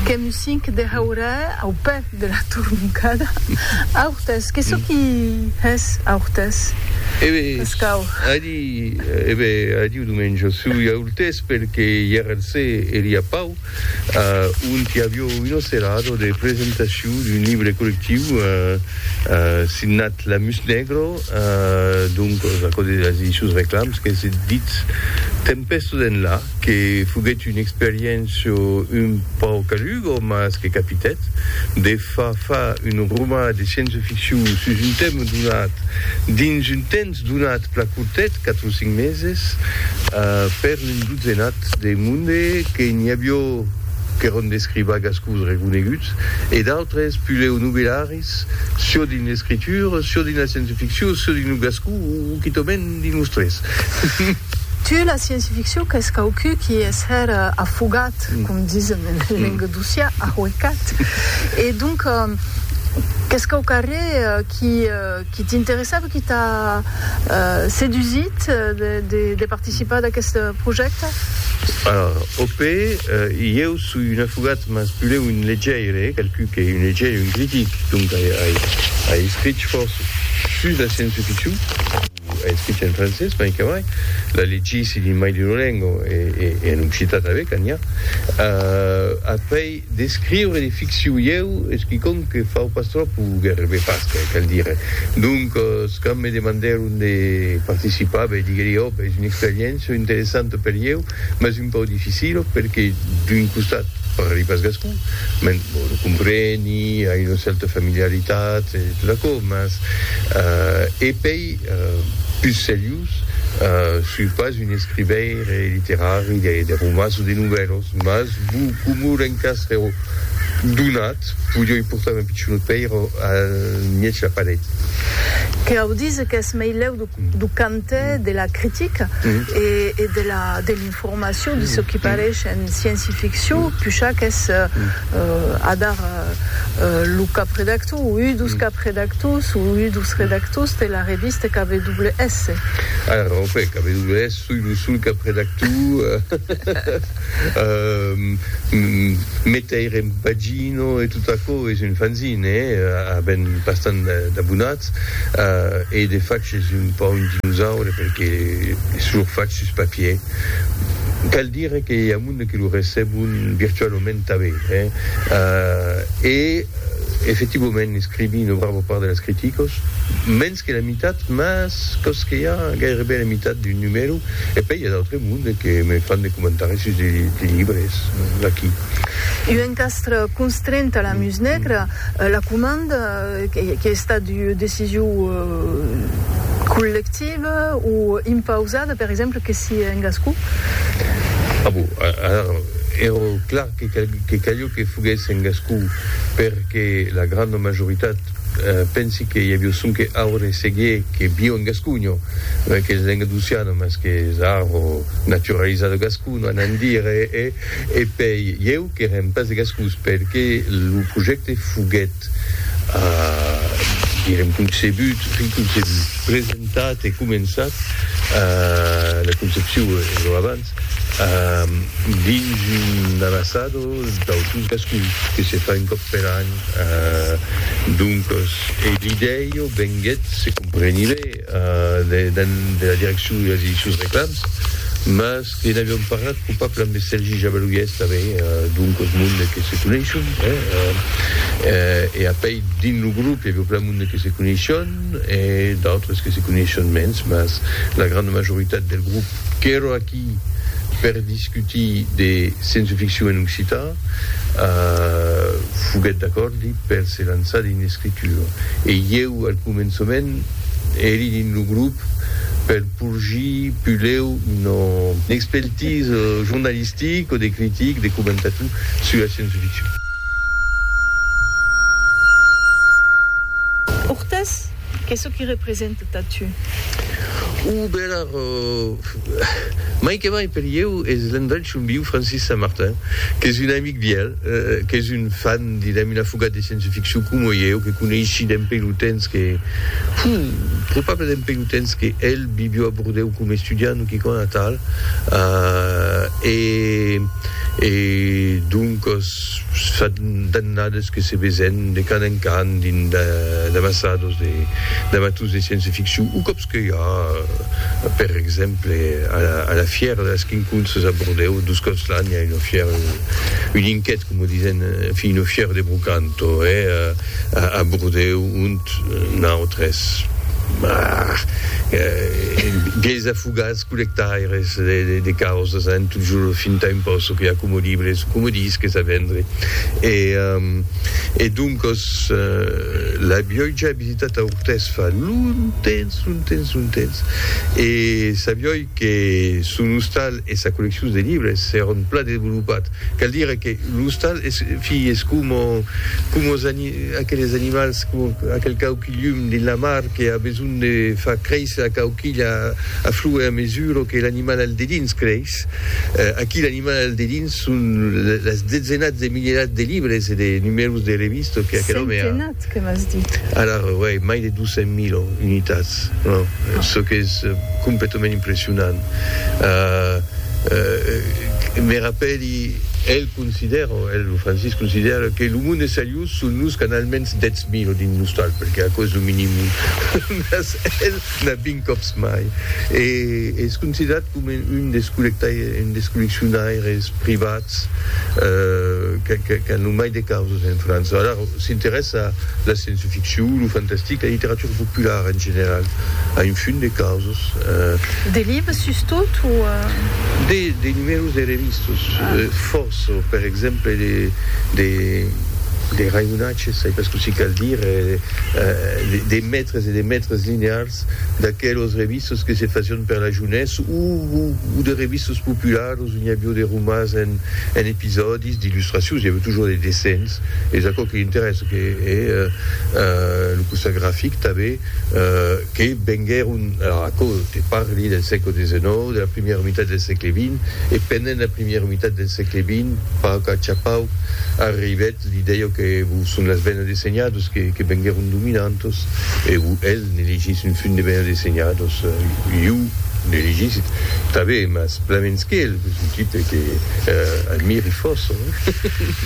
Qu'è music de haurà au pè de la torroncada. Aurtès, que çò qui hès aurtès? E be, adi, e be, adiu Domenjo, sui aurtès pel que ièr al se e li a pau, ont i avió un ocelado de presentacion d'un libre collectiu signat La Mus Negro, doncos, aquò de las edicions Reclams, qu'es dit Tempèsto d'enlà. que foguèt un experiencio un pauc calugo mas que capitèt de fa fa un roman de sciença ficcion sus un tèma donat dins un temps donat pla curtet, 4 o 5 meses, per un dotzenat de monde que n'i avió qu'èron d'escrivagascos reconeguts e d'autres puleu novellari. Ais çò dins l'escritura, çò dins la scienceficcion, çò dins lo gascon o quitament dins los tres. Tu, la scienceficcion qu'es quauqui qui es hèr afogat, com disem en lenga docià, ahuecat, e donc qu'es quauqui arrè qui, Que t'interessava, que t'a sedusit de participar d'aqueste projècte? Alors, OP, ieu soi un afogat, mas pulèu un legeire, qualcú qu'ei un legeire, un critic, donc ai escrich fòrça sus la sciença-ficcion, ai escrich en francés, mai que mai, la legisi dins mai d'una lenga e en occitan tanben, qu'a n'i a. Après. D'escriure de ficciu ieu es quicòm que fau pas tròp o gairebe pas, cal dire. Doncas, quand me demandèron de participar, ben diguèri òp, es una experiéncia interessanta per ieu, mas un pauc dificila perque d'un costat parli pas gascon, men bon, lo compreni, ai una cèrta familiaritat e tot aquò, mas e pei, pus seriós, soi pas un escrivaire literari de romans o de novèlas. Mas bu comu l'encastre ero donat, podioi portar me pichonot pèir a mièg la paret. Que au dise qu'es meilèu do cante de la critica e de l'informacion de çò qui parèish en scienci-ficcion, pucha qu'es adar lo capredactor o un dos capredactors o un dos redactors de la revista KWS. Ara, en efèct, KWS. Soi lo sol cap redactor. Meteir en pagina e tot aquò es un fanzine, a ben bastant d'abonats, e de fach es un pauc un dinosaure perque es toujours fach sus papier. Cal dire que i a monde que lo recebon virtualament tanben, e efectivament escrivi una brava part de las criticas, mens. Mès que la mitat, mès còs que i a gaireben la mitat d'un numèro, e pèi i a d'autre monde que me fan de comentaris sus de libres d'aquí. Un encastre constrent a la mus negra, la comanda qu'i a estat ua decision collectiva o impausada, per exemple, que si en gascon? A bon, ara èra clar que calió que foguèsse en gascon, perque la granda majoritat Pensi que i avió sonque aure seguié que vió en gasconho, mai qu'es lenga d'oceano, mas qu'es arro naturalizado gasconho a n'en dire e e pei ieu qu'erem pas de gascons per que lo projècte foguèt a direm concebut, presentat e començat la concepcion e lo avant. Cat. Dins un amasado d'autun cascun que se fa un còp per an. Doncas, e l'idèia venguèt, se compreni be, de de la direccion de las Ediccions Reclams, mas que n'aviam parlat copable amb es Sergi Jabaluièrs tanben, doncas mon de que se coneisson, eh? E apèi dins lo grop i aviá plan mon de que se coneisson e d'autres que se coneisson mens, mas la granda majoritat del grop. Qu'èro aquí per discutir de sciençoficcion en occitan, foguèt d'acòrdi per se lançar dins l'escritura. E ieu, al començament, èri dins lo grop per porgir puleu una expertise jornalistic o de critic, de comentator sus la sciençoficcion. Ortès Qu'es çò qui represente tà tu? O Bèlard, mai que mai per ieu, es l'invencion viu Francis Saint-Martin, qu'es un amic vièlh, qu'es un fan, direm, un afogat de scienceficcion coma ieu, que coneishi dempèi lo temps que, puu, probable dempèi lo temps que el vivió a Bordèu coma estudiant o quicòna atal, e, e, doncas, Fa d'annades que se vesen de can en can dins d'ambassados de d'amaturs de sciença-ficcion o còps que i a, per exemple, a la fièra de las quinconces a Bordèu, dos còps l'an i a una fièra, un inquet, coma disen, enfin, una fièra de brocanto, eh, a Bordèu, ont nautres, bah, biais afogats. collectaires de causas en tot jorn fin tà impòsso que acomodibres coma disques a vendre e doncas l'avioi ja visitat a Ortès fa longtemps longtemps longtemps e sabioi que son ostal e sa colleccion de libres s'èron plan desvolopat cal dire que l'ostal es coma aqueles animals coma aquel cau Llum dins la mar que a besonh de far créisser a quauquilha a flue a mesura que l'animal al dedins creis. Aquí l'animal al dedins son las dezenats de milierats de libres e de numèros de revistas que aquel òme a. Centenats que m'as dit. Ara, uèi, mai de 200.000 unitats, çò qu'es completament impressionant. Me rapèli, el considèra, el, lo Francis, considèra que lo monde es a llur. Son los qu'an almens 10.000 o dins l'ostal, perque aquò es lo minimum, mas el n'a 20 còps mai e es considerat coma un des colleccionaires privats qu'an lo mai de causas en França. Alara, s'interèssa a la sciençoficcion, lo fantastic, la literatura populara en general, a un fum de causas. De libres sustot o? De numèros de revistas. Çò, per exemple, de, de raïonatges, sai pas cossí cal dire, de mètres e de mètres linears d'aquelos revistos que se facion per la jounesse o, o, o de revistos popularos ont i avió de romans en, en episòdis, d'illustracions, i avió toujours de dessenh, es aquò que l'interèssa, que, e, lo costat grafic tanben, que venguèron a aquò, te parli del sègle xix, de la primièra mitat del sègle xx, e pendent la primièra mitat del sègle xx, pauc a chapauc, arribèt l'idèia que vos son las bènas de senhados que que venguèron dominantas, e vos el ne legís un fum de bènas de senhados, iu ne legís tanben, mas plamens qu'el, que son tipe que admiri fòrça.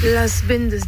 Las bènas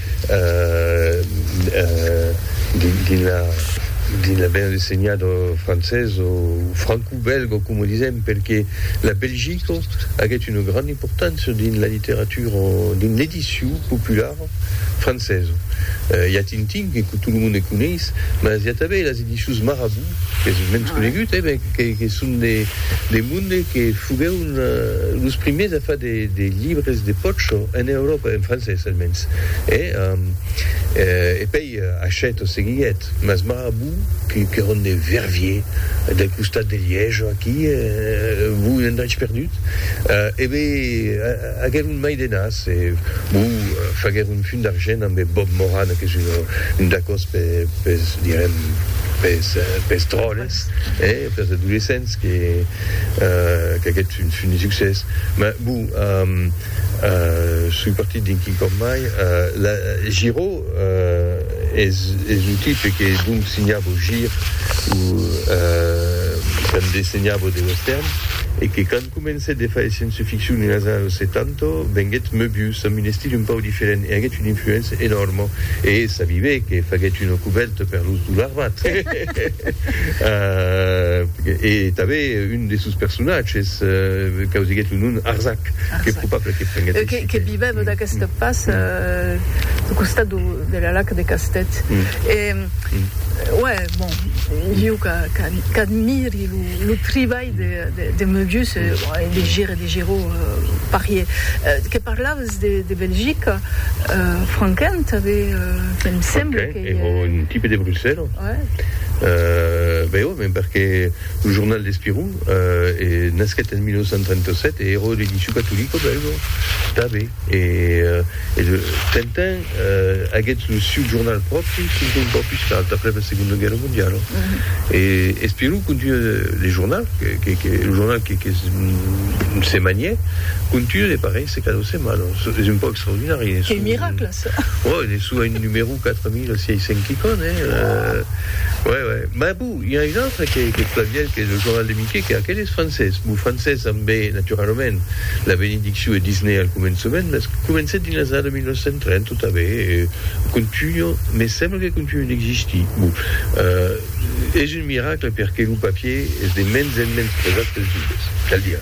dins la banda senhada francesa o francobèlga o coma disèm perqué la Belgica aguèt una granda importància dins la literatura dins l'edicion populara francesa i a Tintin que tot lo monde coneis mas i a tanben las edicions Marabout qu'es mens conegut e ben que son de monde que foguèron Los primièrs a far de libres de pòcho en Euròpa, en francés almens, e pèi Hachette o seguiguèt, mas Marabout, qu'èron de Verviers, del costat de Liège o aquí, bon, un endrech perdut, e be agèron mai de nas e, bon, faguèron fum d'argent ambe Bob Moran, qu'es un dacòs pes, direm, pes dròlles, pes adolescents que. Qu'aguèt un fin de succès. Mas bon, soi partit d'un quicòm mai. La Giro es lo tipe que donc signavo Gir o tandé signavo de Western e que quand comencèt de faire science fiction en las annadas 70 venguèt Möbius amb un estil un pauc diferent e aguèt una influéncia enòrma e s'avivé que faguèt una cubèrta per los Dollarbats. E tanben un de sos personatges causiguèt lo nom Arzac, qu'es probable que prenguèt aicí. E que vivèt vat aqueste pas au costat de la lac de Castèth. E uè, bon, iu qu'admiri lo tribalh de Möbius e de Gir e de Giraud parier. Que parlaves de Belgica, Franquin, tanben, que me semble que. Èra un tipe de Bruxèla. Ben ò, ben perque lo jornal L'Espirou nasquèt en 1937 e èra l'edicion catolica bèlga tanben. E Tintin aguèt lo siu jornal pròpri fins un pauc pus tard, après la Segonda Guèrra Mondiala. E Espirou continua le jornal, lo jornal que se manièt, continua de parèisser cada setmana. Es un pauc extraordinari. Ò, en essu a un numerou 4600 quicon, eh? Uè, uè. M'a bou, i a un autre qu'ei aquest Flaviel qu'ei lo jornal de Miqué, que aquel es francés. Bou, francés ambé, naturalament, la benedicciu e Disney al començament, mès comencèt dins las annadas 1930 tot a bé e contunho, me sembla que contunho d'existir. Bou, eh, es un miracle perqué lo papier es de mens en mens presat pels joves, cal dire.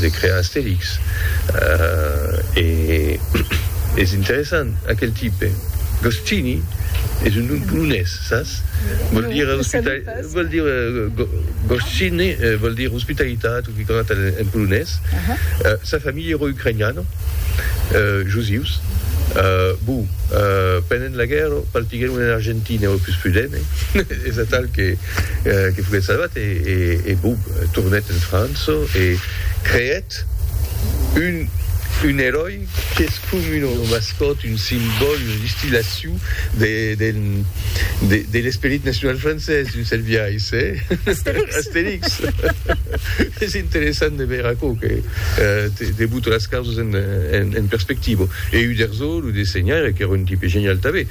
de crear Astèrix e es interessant aquel tipe Goscinny es un nom polonés sas? vòl dire vòl dire Goscinny vòl dire ospitalitat o quicòna tal en polonés sa familha èra ucrainiana josius bon pendent la guèrra partiguèron en Argentina èra pus prudent es atal que que foguèt salvat e bop tornèt en França e creèt un eròi qu'es com una mascòt, un simbòl, una distillacion de l'esperit nacional francés d'un cèrt biais, Astérix. Es interessant de veire aquò que te bota las causas en perspectiva. E Uderzo, lo dessenhaire, qu'èra un tipe genial tanben.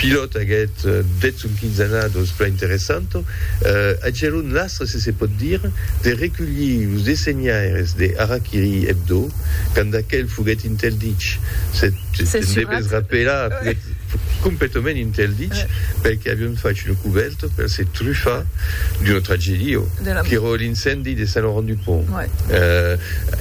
Pilòt aguèt deth son quinzenados plan interessant. Agièron un lastre, se se pòt dire, de reculhir los dessenhaires de Hara-Kiri Hebdo, quand aquel foguèt interdich, se te'n debes rapelar, foguèt completament interdich, pel que avion fach una cubèrta per se trufar d'una tragèdia, qu'èra l'incendi de Saint-Laurent-du-Pont.